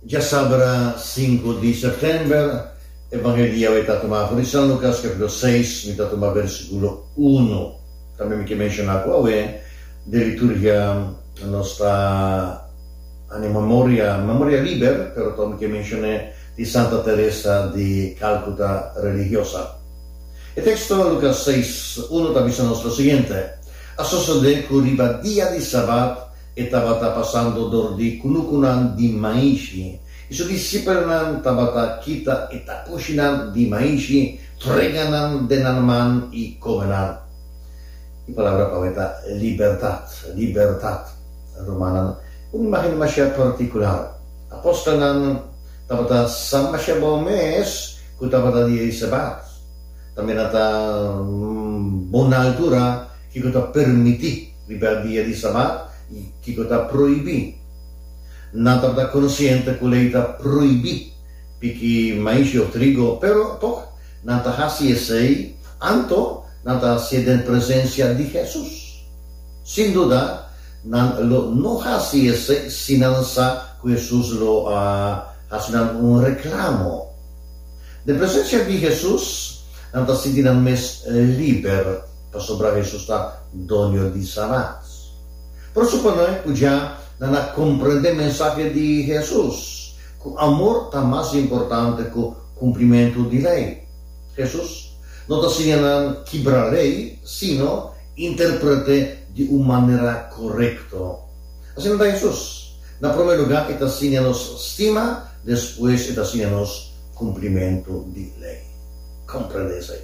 Djasabra sinku di sèptèmber, e Bangelia Wei Ta Tumá Afó di San Lukas, kapítulo seis, mi ta tuma bèrsikulo unu. Tambe mi ke menshoná ku awe den liturgia nos ta haña memoria, memoria liber, pero tok mi ke menshoné di Santa Teresa di Kálkuta, religiosa. E teksto Lukas seis, unu ta bisa nos lo siguiente, A sosodé ku riba dia di Sabat E tabata pasando dor di kunukunan di maishi i su disipelnan tabata kita e takushinan di maishi, frega nan den nan man i kome nan. E palabra pa mi ta libertat, libertat. Rumannan, un imágen dimashá partikular. Apostelnan tabata sa masha bon mes ku tabata di e Sebat. Tambe nan ta bon na altura, kiko ta permití. Riba dia di Sabat, kiko ta prohibí? Nan tabata konsiente ku lei ta prohibí piki maishi òf trigo, pero tòg nan ta hasi esei, anto nan ta hasié den presensia di Hesus. Sin duda, nan lo no hasi esei si nan sa ku Hesus lo a hasi nan un reklamo. Den presensia di Hesus, nan ta sinti nan mes liber. Pasobra Hesus ta Doño di Sanans. Por eso pa noi pudia nan a comprende mensahe di Hesus, cu amor ta mas importante cu cumplimentu di ley. Hesus no ta siña nan kibra ley, sino interprete di un manera corecto. Asina ta Hesus, na prome lugar e ta siña nos stima, despues e ta siña nos cumplimentu di ley. Comprende esai.